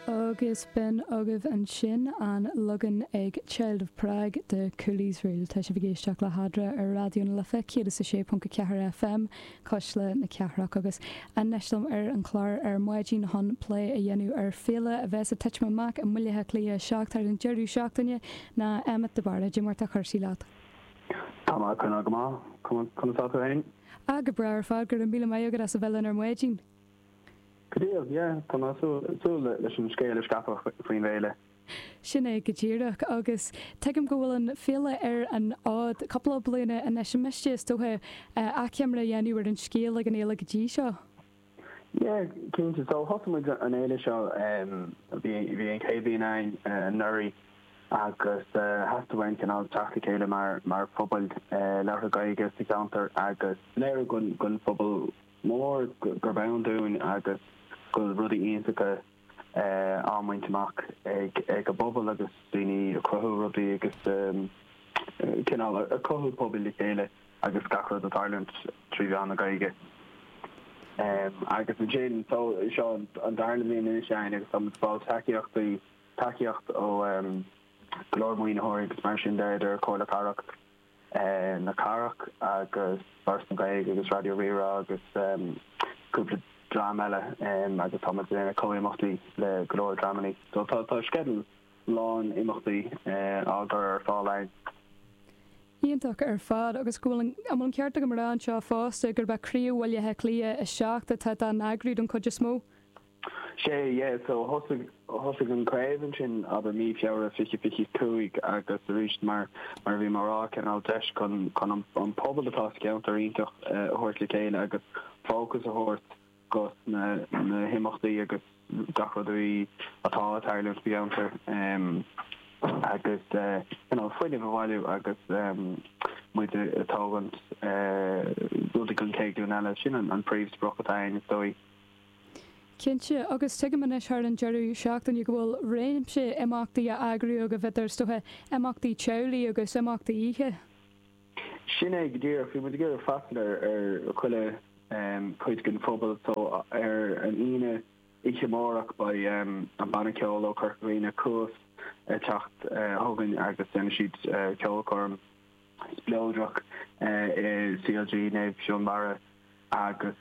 Agus b'in agaibh ansin an leagan ag Child of Prague de 'Cool Iosrael'. Tá sibh ag éisteacht le hAdra ar Raidió na Life 106.4 FM, Cuisle na Cathrach, agus anois liom ar an chlár ar maidin chun plé a dhéanamh ar fhéile a bheas ag titim amach i mBaile Átha Cliath 7 thar an deireadh seachtaine ná Emmet de Barra. Dé mar atá cúrsaí leat. Tá mé ag coinneáil go maith. Conas atá tú féin? Ah, go breá ar fad. Go raibh míle maith agat as a bheith linn ar maidin. Go deo, yeah, tá mé ag súil leis an scéal a scaipeadh faoin bhféile. Sin é go díreach, agus tuigim go bhfuil an fhéile ar an fhód cúpla bliana anois, an miste, is dócha, achoimre a dhéanamh ar an scéal atá ag an fhéile go dtí seo? Yeah, cinnte, so thosaigh muid an fhéile seo, bhí an chéad bhliain againn anuraidh agus theastaigh uainn cineál teacht le chéile mar phobal labhartha Gaeilge sa cheantar agus léiriú don phobal, mór gurb ann dúinn agus go bhfuil rudaí iontacha á mbaint amach ag an bpobal agus daoine ag cruthú rudaí agus cineál ag cothú pobal le chéile agus gach rud ag tarlúint trí mheán na Gaeilge. Agus ansin, so, seo an darna bhliain anois againn agus táimid ag fáil tacaíochtaí, tacaíocht ó go leor maoinitheoirí agus mar sin de idir Comhairle Cathrach, na Cathrach agus Foras na Gaeilge agus Raidió Rí-Rá agus cúpla dream eile agus tá muid ag déanamh comh-imeachtaí le go leor dreamannaí. So tá sceideal lán imeachtaí á gcur ar fáil againn. Iontach ar fad agus an bhfuil an, an bhfuil an ceart agam a rá anseo fosta gurb é Craobh Bhaile Átha Cliath 7 atá dá n-eagrú don chuid is mó? Sea, yeah, so thosaigh, thosaigh an chraobh ansin, abair, mí Feabhra, fiche, fiche cúig agus aríst mar, mar a bhí mé a rá, cineál deis chun, chun an, an pobal atá sa cheantar iontach a thabhairt le chéile agus fócas a thabhairt dos na, na himeachtaí agus gach rud a bhí, atá ag tarlúint sa gceantar ehm agus eh you know fuinneamh a bhailiú agus ehm muid ag tógaint eh rudaí don chéad ghlúin eile, sin an, an príomhsprioc atá a'inn is dóigh. Cinnte, agus tuigim anois thar an deireadh seachtaine go bhfuil réimse imeachtaí á n-eagrú agaibh, idir is dócha, imeachtaí teaghlaigh agus imeachtaí oíche. Sin é go díreach. Bhí muid ag iarraidh freastal ar chuile chuid den phobal so ar an Aoine oíche amárach beidh an banna ceoil ó Chorca Dhuibhne, Cuas, ag teacht chugainn agus déanfaidh siad ceolchoirm. spleodrach in CLG Naomh Fionbarra agus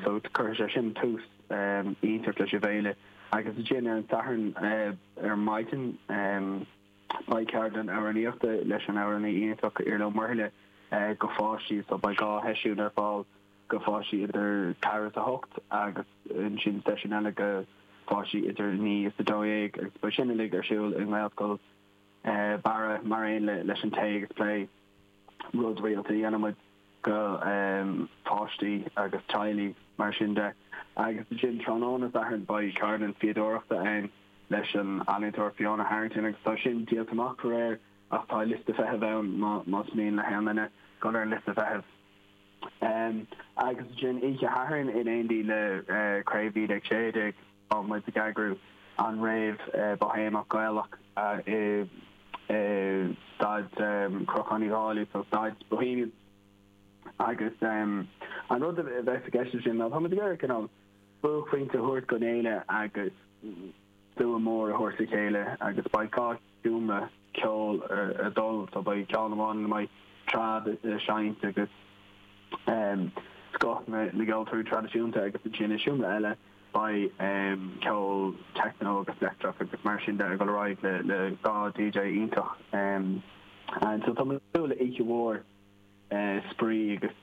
so cuirfidh sé sin tús iontach leis an bhféile agus ansin ar an Satharn ar maidin beidh ceardlann amhránaíochta leis an amhránaí iontach Orla Ní Mhuirthile go pháistí so beidh dhá sheisiún ar fáil go pháistí idir 4 is 8 agus ansin seisiún eile go pháistí idir 9 is 12 agus beidh sin uilig ar siúl i nGaelscoil Barra, mar aon leis an tae agus plé rud rialta a dhéanann muid go páistí agus teaghlaigh, mar sin de, agus ansin tráthnóna Sathairn beidh ceardlann fíodóireachta ann leis an ealaíontóir Fiona Harrington agus tá sin díolta amach faraor ach tá liosta feithimh ann más mian le haon duine dul ar an liosta feithimh agus ansin oíche Shathairn in éindí le Craobh 1916. Tá muid ag eagrú an réabh Boihéamach Gaelach i Staid Chnocán Uí Dhálaigh, so Staid Bohemian agus an rud a bheas i gceist ansin ná tá muid ag iarraidh cineál buaicphointe a thabhairt don fhéile agus slua mór a thabhairt le chéile agus baghcáil. seomra ceoil ar dul, so beidh ceann amháin ina mbeidh trad a seinnt agus scoth na gceoltóirí traidisiúnta agus ansin i seomra eile beidh ceol techno agus leictreach agus mar sin de ag dul ar aghaidh le le dhá DJ iontach and so tá mé ag súil le oíche mhór spraoi agus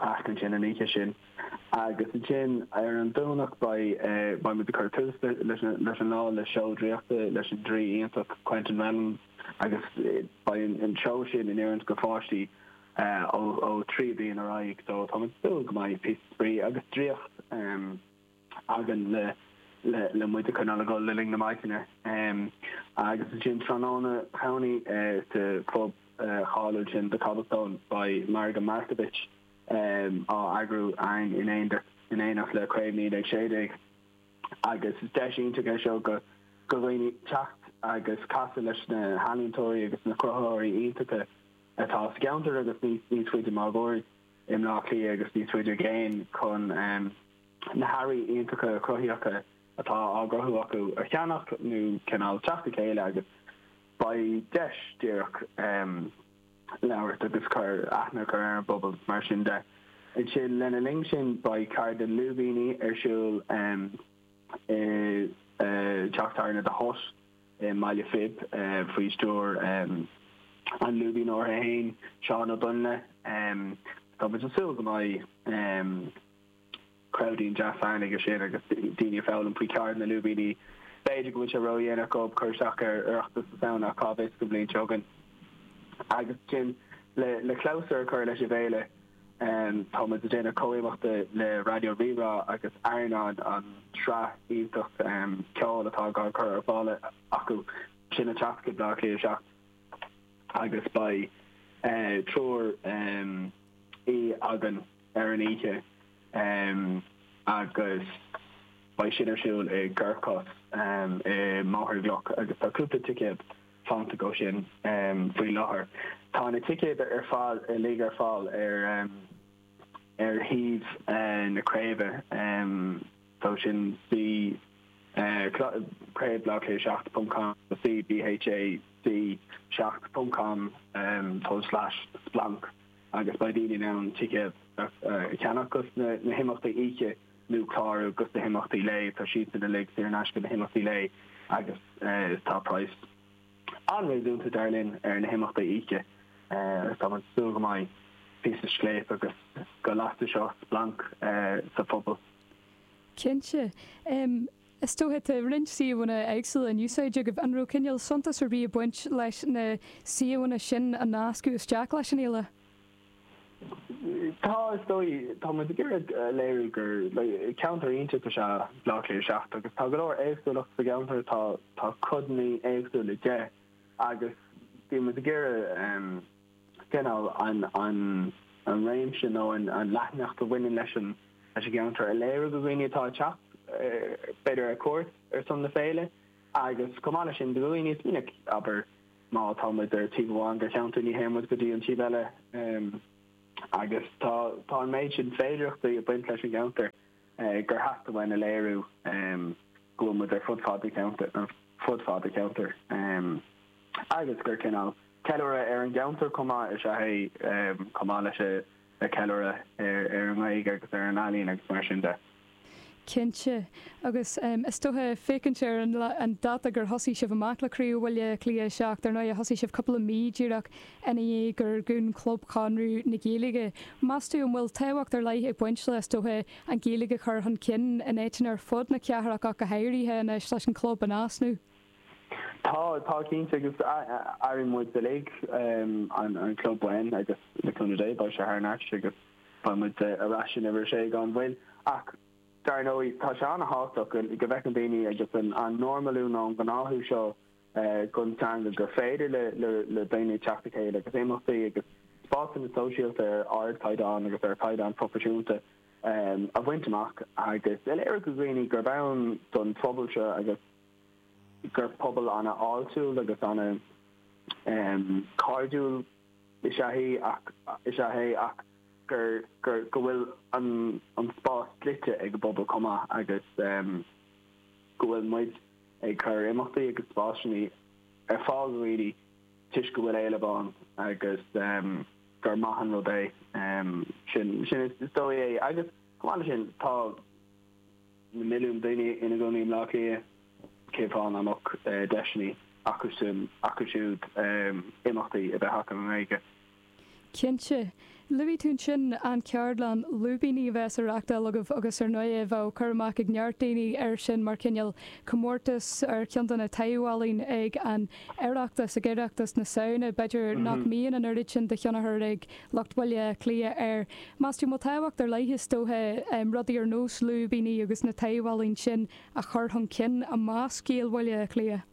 Ach ansin an oíche sin. Agus ansin ar an Domhnach beidh muid ag cur tús leis an lá le seó draíochta leis an draoi iontach Quentin Reynolds agus beidh an seó sin in oiriúint go pháistí ó 3 bliain ar aghaidh so tá muid ag súil go mbeidh píosa spraoi agus draíocht againn le muid a coinneáil ag gol le linn na maidine. Agus ansin tráthnóna Domhnaigh sa phub cháiliúil sin The Cobblestone, beidh Margadh Markievicz á eagrú a'ainn in éineacht le Craobh 1916 agus is deis iontach é seo go dhaoine teacht agus casadh leis na healaíontóirí agus na cruthaitheoirí iontacha atá sa gceantar agus níos faide máguaird i mBleá Cliath agus níos faide i gcéin chun na hearraí iontacha cruthaitheacha atá á gcruthú acu a cheannach nó cineál teacht le chéile agus beidh deis díreach labhairt agus cur aithne a chur ar an bpobal. Mar sin de, ansin, lena linn sin, beidh ceardlann lúibíní ar siúl i dteach tábhairne The Hut i mBaile Phib faoi stiúir an lúibíneora féin, Seán Ó Doinnle. Tá muid ag súil go mbeidh. Ceardlann deas ansin aige sin agus daoine a foghlaim faoi cheird na lúibíní. B'fhéidir go bhfuil sé ró-dhéanach dóibh cur isteach ar Oireachtas na Samhna ach cá bhfios don bhliain seo chugainn. Agus ansin le clabhsúr a chur leis an bhféile, tá muid ag déanamh comhimeacht le Raidió Rí-Rá agus Ardán, an tsraith iontach ceoil atá á gcur ar fáil acu. Sin ag teacht chuig Baile Átha Cliath 7 agus beidh triúr aoi ann ar an oíche agus beidh sin ar siúl i gCorcos i mBóthar na gCloch agus tá cúpla ticéad fanta dó sin faoi láthair. Tá na ticéid ar fad uilig ar fáil ar shuíomh na craoibhe so sin craobh BÁC 7 ponc com nó cbhac 7 ponc com forward slash splanc. agus beidh daoine in ann ticéad a cheannach do sna himeachtaí oíche nó clárú do sna himeachtaí lae. Tá siadsan uilig saor in aisce, na himeachtaí lae, agus tá praghas an-réasúnta, dar linn, ar na himeachtaí oíche. Tá muid ag súil go mbeidh píosa scléip agus go lasfaidh seo splanc sa phobal. Cinnte. Is dóiche tá roinnt suíomhanna éagsúla in úsáid agaibh. An raibh cineál suntas ar bith ag baint leis na suíomhanna sin a nascadh isteach leis an fhéile? Tá, is dóigh. Tá muid ag iarraidh a léiriú gur ceantar iontach is ea Bleá Cliath 7 agus tá go leor éagsúlacht sa gceantar, tá codanna éagsúla de agus bíonn muid ag iarraidh, cineál, an réimse nó an leathanacht a bhaineann leis an gceantar a léiriú do dhaoine atá ag teacht, b'fhéidir, ar cuairt ar son na féile agus, chomh maith leis sin, do dhaoine mar is minic, abair, má tá muid ar taobh amháin den cheantar, ní théann muid go dtí an taobh eile agus tá an méid sin féidearthachtaí ag baint leis an gceantar gur theastaigh uainn a léiriú. go bhfuil muid ar fud fad an cheantair, ar fud fad an cheantair, agus gur cineál ceiliúradh ar an gceantar chomh maith is ea é, chomh maith leis an ceiliúradh ar an nGaeilge agus ar an ealaín agus mar sin de. Cinnte. Agus is dócha, ag féachaint ar an dáta gur thosaigh sibh amach le Craobh Bhaile Átha Cliath 7, ar ndóigh, thosaigh sibh cúpla mí díreach ina dhiaidh gur dhún Club Chonradh na Gaeilge. Meas tú an bhfuil tábhacht ar leith ag baint le, is dócha, an Ghaeilge a chur chun cinn in áiteanna ar fud na cathrach ach go háirithe anois leis an chlub in easnamh. Tá, tá cinnte agus aireoidh muid uilig an club uainn agus le cúnamh Dé beidh sé thar n-ais agus beidh muid ar ais in Uimhir 6 gan mhoill ach dar ndóigh tá sé an-thábhachtach go bhfeiceann daoine agus an normalú nó an gnáthú seo don teanga gur féidir le daoine teacht le chéile agus imeachtaí agus spásanna sóisialta ar ardchaighdeán agus ar chaighdeán proifisiúnta a bhaint amach agus a léiriú do dhaoine gurb ann don phobal seo agus gur pobal ana fháiltiúil agus ana chairdiúil is ea sinn ach go bhfuil an spás dlite ag an bpobal chomh maith agus go bhfuil muid ag cur imeachtaí agus spásanna ar fáil do dhaoine toisc go bhfuil éileamh ann agus gur maith an rud é sin. Sin sin is dóigh é agus chomh maith leis sin, tá na milliúin daoine ina gcónaí i mBaile Átha Cliath, cén fáth nach mbeadh deiseanna acusan, acu siúd, imeachtaí a bheith acu i nGaeilge? Cinnte, luaigh tú ansin an cheardlann lúibíní a bheas á reachtáil agaibh agus ar ndóigh bheadh cur amach ag neart daoine air sin mar chineál comórtas ar cheann de na taibh-ealaíona ag an Oireachtas, ag Oireachtas na Samhna. B'fhéidir nach mbíonn an oiread sin de thionchar ag lucht Bhaile Átha Cliath air. Meas tú an bhfuil tábhacht ar leith is dócha rudaí ar nós lúibíní agus na taibh-ealaíona sin a chur chun cinn i measc Ghaeil Bhaile Átha Cliath?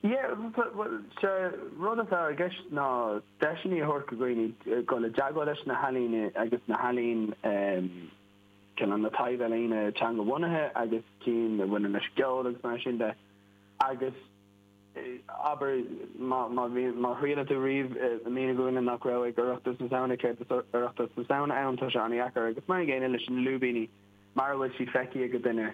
Yeah, bhuel, sea, rud atá i gceist ná deiseanna a thabhairt do dhaoine dul i dteagmháil leis na healaíona agus na healaíon cinn na taibh-ealaíona teanga-bhunaithe agus cinn a bhaineann leis an gceol agus mar sin de agus abair má má thriaileann tú riamh a mhíniú do dhuine nach raibh ag Oireachtas na Samhna céard is Oireachtas na Samhna ann tá sé an-dheacair agus mar an gcéanna leis na lúibíní mara bhfuil siad feicthe ag duine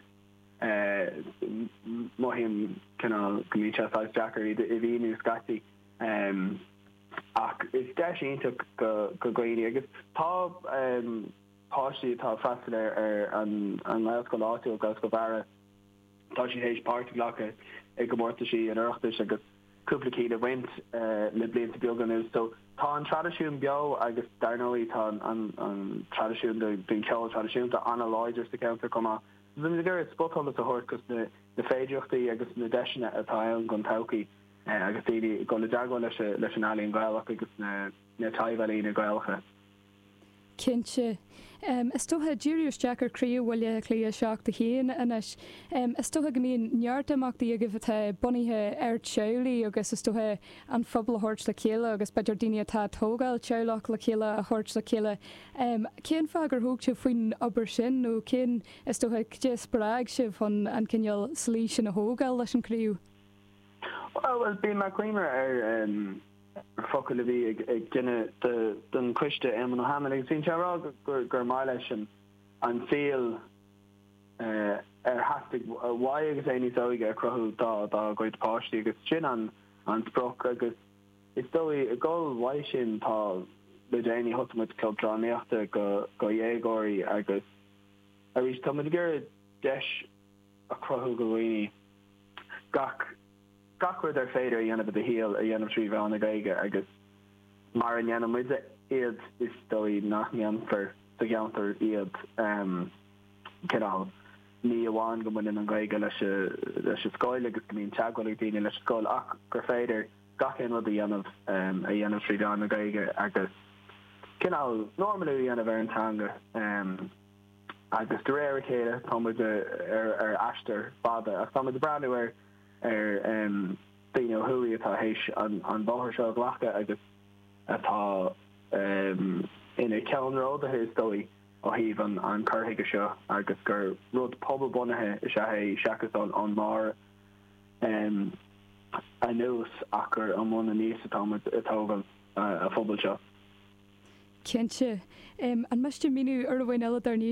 Mothaím cineál go mbíonn sé saghas deacair iad a mhíniú scaití. Ach is deis iontach do dhaoine agus tá páistí atá ag freastal ar an nGaelscoil áitiúil, Gaelscoil Bharra, tá siad théis páirt a ghlacadh i gcomórtaisí an Oireachtais agus cúpla ceann a bhaint le blianta beaga anuas. So tá an traidisiún beo agus dar ndóigh tá an traidisiún den cheol traidisiúnta an-láidir sa cheantar chomh maith. Bheimis ag iarraidh spotsholas a thabhairt dos na féidireachtaí agus na deiseanna atá ann don todhchaí agus daoine ag dul i dteagmháil leis an ealaín Ghaelach agus na taibh-ealaíona Gaelacha. Cinnte. Is dócha, díriú isteach ar Chraobh Bhaile Átha Cliath 7 1 anois, is dócha go mbíonn neart imeachtaí agaibh atá bunaithe ar theaghlaigh agus is dócha an phobal a thabhairt le chéile agus b'fhéidir daoine atá ag tógáil teaghlach le chéile a thabhairt le chéile Cén fáth gur thóg sibh faoin obair sin nó cén, is dócha, cad é a spreag sibh chun an cineál slí sin a thógáil leis an gcraobh? Bhuel, bhí mé ag cuimhneamh ar focail a bhí ag duine den choiste, Éamonn Ó hAdhmaill, agus bhí sé ag rá gur mhaith leis an saol ar theastaigh uaidh agus é níos óige a chruthú dá gcuid páistí agus sin an sprioc agus, Is dóigh, ag gabháil uaidh sin, tá le déanaí thosaigh muid club drámaíochta go dhéagóirí agus arís tá muid ag iarraidh deis a chruthú go dhaoine gach gach rud ar féidir a dhéanamh i do shaol a dhéanamh trí mheán na Gaeilge agus mara ndéanann muide iad is dóigh nach ndéanfar sa gceantar iad. Cineál, ní amháin go mbaineann an Ghaeilge leis an scoil agus go mbíonn teagmháil ag daoine leis an scoil ach gur féidir gach aon rud a dhéanamh, a dhéanamh trí mheán na Gaeilge agus cineál normalú a dhéanamh ar an teanga agus de réir a chéile tá muid ar aistear fada ach tá muid ag breathnú ar daoine ó thuaidh atá théis an bóthar seo a ghlacadh agus atá ina ceannródaithe is dóigh ó thaobh an chur chuige seo agus gur rud pobalbhunaithe is ea é seachas ón mbarr. anuas ach gur ón mbun aníos atá muid ag tógáil a phobal seo. Cinnte. An miste míniú ar an bpointe eile dár ndóigh?